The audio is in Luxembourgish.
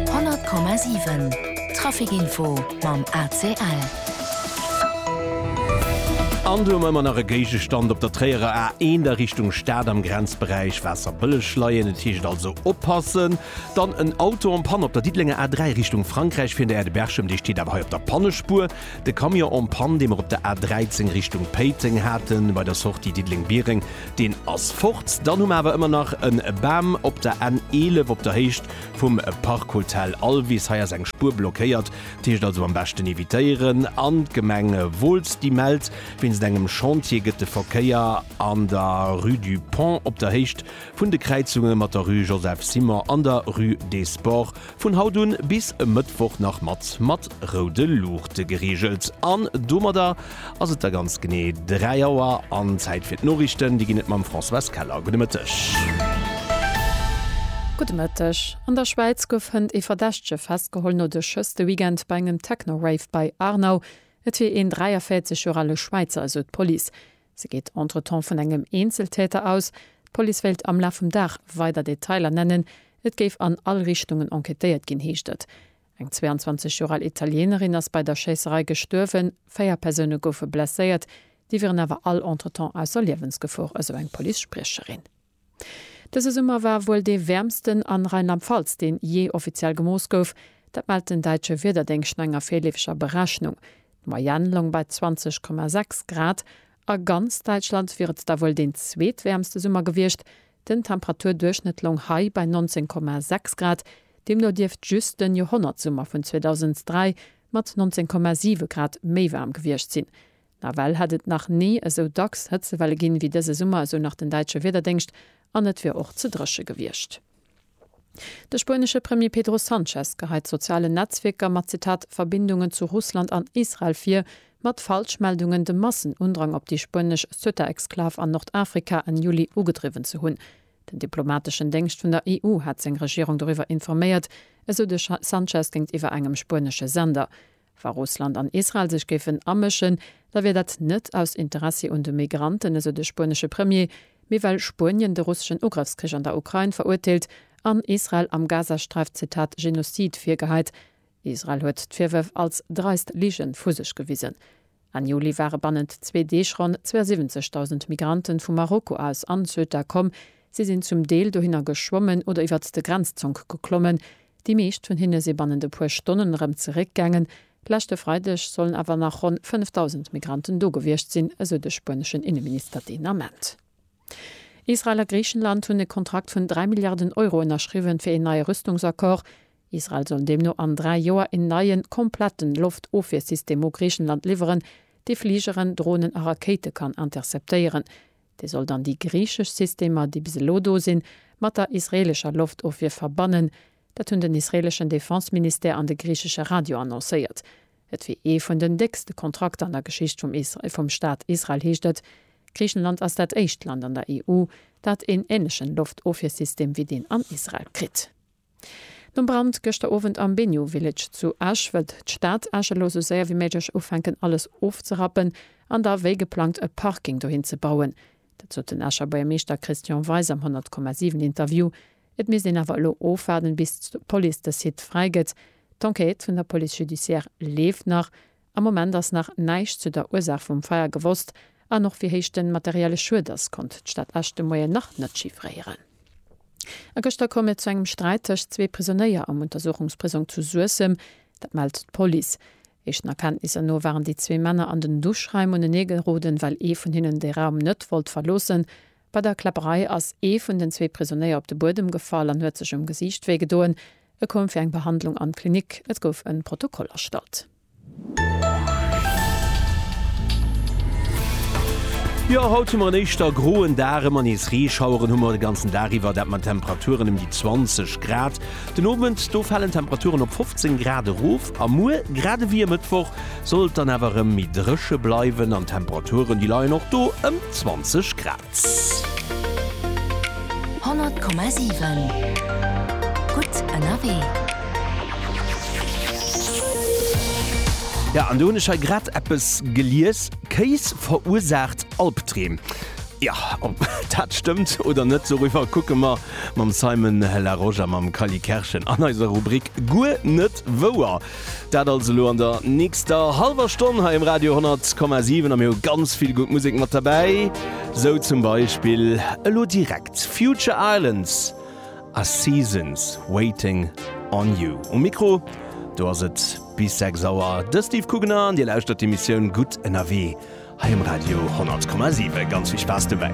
100,7 Trafic Info mam ACL. An du ëmmer nach e Géigestand op der Tréierer A1 a Richtung Stad am Grenzberäich Waasserbëlleg leien, et heescht also oppassen. Dann en Auto en panne op der Diddelenger A3 Richtung Frankräich fir Neyer de Berchem, dee steet awer hei op der Pannespuer. De Camion en panne, dee mer op der A13 Richtung Péiteng haten, bei der Sortie Diddeleng-Biereng, Deen ass fort. Dann hu mer awer ëmmer nach e Bam op der N 11 op der Héicht vum Parkhotel Alvis. Hei ass eng Spuer blockéiert, dat heescht also am beschten evitéieren. An d'Gemeng Wolz, déi mellt, wéinst engem Chantier gëtt de Verkéier an der Rue du Pont op der Héicht vun de Kräizunge mat der Rue Joseph Simon an der Rue des Sports Vun haut un bis e Mëttwoch nach mat mat roude Luuchte gereegelt an domadder ass et da ganz genee 3 Auer an Zäit fir d'Noriichten. Déi ginn et mam Françoise Keller. Gudde Mëtteg. Gudde Mëtteg. An der Schwäiz gouf hënt ee Verdächtege festgeholl no de Schëss de Weekend bei engem Techno-Rave bei Aarnau. Et wier een 43 Joer ale Schwäizer, esou d'Police. Se geet entretemps vun engem Eenzeltäter aus. D'Police wéilt am Laf vum Dag weider Detailer nennen. Et géif an all Richtungen enquêtéiert ginn, heescht et. Eng 22 Joer al Italienerin ass bei der Schéisserei gestuerwen, véier Persoune goufe blesséiert. Déi wieren awer all entretemps ausser Liewensgefor, esou eng Police-Spriecherin. Dëse Summer war wuel dee wäermsten an Rheinland-Pfalz, deen jee offiziell gemooss gouf. Dat mellt den däitsche Wiederdéngscht no enger virleefeger Berechnung. D'Moyenne loung bei 20,6 Grad. A ganz Däitschland wier et da wuel deen zweetwäermste Summer gewiescht. Den Temperaturduerchschnëtt loung hei bei 19,6 Grad. Deemno dierft just den Joerhonnertsummer vun 2003 mat 19,7 Grad méi waarm gewiescht sinn. Nawell hätt et nach ni esou dacks Hëtzewelle ginn, ewéi dëse Summer, esou nach den däitsche Wiederdéngscht, an et wier och ze dréche gewiescht. De spuenesche Premier Pedro Sanchez geheit sozialen Netzwierker mat, Zitat, Verbindungen zu Russland an Israel vir, mat Falschmeldungen de Massenundrang op déi spuenesch Ceuta-Exklav an Nordafrika Enn Juli ugedriwwen ze hunn. Den diplomateschen Déngscht vun der EU hat seng Regierung doriwwer informéiert, esou de Sanchez géintiwwer engem spuenesche Sender. Wa Russland an Israel sech géifen amëschen, da wier dat net aus Interessi un de Migranten, esou de spuenesche Premier, mee well Spuenien de russeschen Ugrëffskrich an der Ukrain verurteelt an Israel am Gazasträif, Zitat, Genozid virgeheit. Israel huet d'Virwërf als dreist Ligen vu sech gewisen. Enn Juli ware bannent zwee Deeg ronn 72.000 Migrante vu Marokko aus an Ceuta komm. Si sinn zum Deel dohinner geschwommen oder iwwert de Grenzzonk geklommen. Déi meescht vun hinne si bannent e puer Stonnen erëm zeréckgaangen. Leschte Freideg sollen awer nach ronn 5.000 Migranten do gewiescht sinn, esou de spueneschen Inneminister deen Ament. Israel a Griichenland hunn e Kontrakt vun 3 Milliarden Euro ënnerschriwwen, fir een neie Rüstungsaccord. Israel soll deemno an dräi Joer een neien, kompletten Loftofwiersystem u Griichenland liwweren, dee Fligeren, Dronen a Rakéite kann interceptéieren. Dee soll dann déi griichesch Systemer, déi bis elo do sinn, mat der israeelescher Loftofwier verbannen. Dat hunn den israeeleschen Defense-Ministère an de griichesche Radio annoncéiert. Et wier ee vun den déckste Kontrakter an der Geschicht vum Staat Israel, heescht et. Griichenland ass dat éischt Land an der EU, dat een änlechen Loftofwiersystem wéi deen an Israel kritt. Nom Brand gëschter Owend am Benyu Village zu Esch wëllt d'Stad Esch elo sou séier wéi méiglech ufänken alles ofzerappen an da wéi geplangt e Parking dohin ze bauen. Dat sot den Escher Buergermeeschter Christian Weis am 100,7 Interview. Et misst een awer elo ofwaarden bis d'Police de Site fräi gëtt. D'Enquête vun der Police judiciaire leeft nach. Am Moment ass nach näischt zu der Ursaach vum Feier gewosst an och wéi héich de materielle Schued ass, konnt d'Stad Esch de Moien nach net chiffréieren. A gëschter koum et zu engem Sträit tëscht zwee Prisonéier am Untersuchungsprisong zu Suessem. Dat mellt d'Police. Éischten Erkenntnisser no waren déi zwee Männer an den Duschraim uneneegeroden, well ee vun hinnen de Raum net wollt verloossen. Bei der Kläpperei ass ee vun den zwee Prisonéier op de Buedem gefall an huet sech um Gesiicht wéi gedoen. E koum fir eng Behandlung an d'Klinik. Et gouf en Protokoll erstallt. Jo, haut hu mer en éischter groen Dag, ëmmer nees Reeschaueren hu mer de ganzen Dag iwwer, dat mat Temperaturen ëm déi 20 Grad. Den Owend, do falen d'Temperaturen op 15 Grad erof. A muer, grad ewéi e Mëttwoch, soll et dann awer erëm méi dréche bleiwen an d'Temperaturen, déi leien och do ëm 20 Grad. 100,7 Gutt ënnerwee. Ja, an do hunn ech hei grad eppes gelies, Kéis verursaacht Albdreem. Jo, ob dat stëmmt oder net, doriwwer kucke mer Mam Simon Larosche a mam Kally Kerschen an eiser Rubrik Guer net wouer. Dat alles elo an der nächster hallwer Stonn hei um Radio 10,7 a mir hu ganz vill gutt Musek mat derbäi, sou zum Beispill elo direkt Future Islands a Seasons Waiting on You. Um Mikro do ass et bis 6 Auer de Steve Kugener an Dir lauschtert d'Emissioun Gutt ënnerwee hei um Radio 10,7. Ganz vill Spaass dobäi!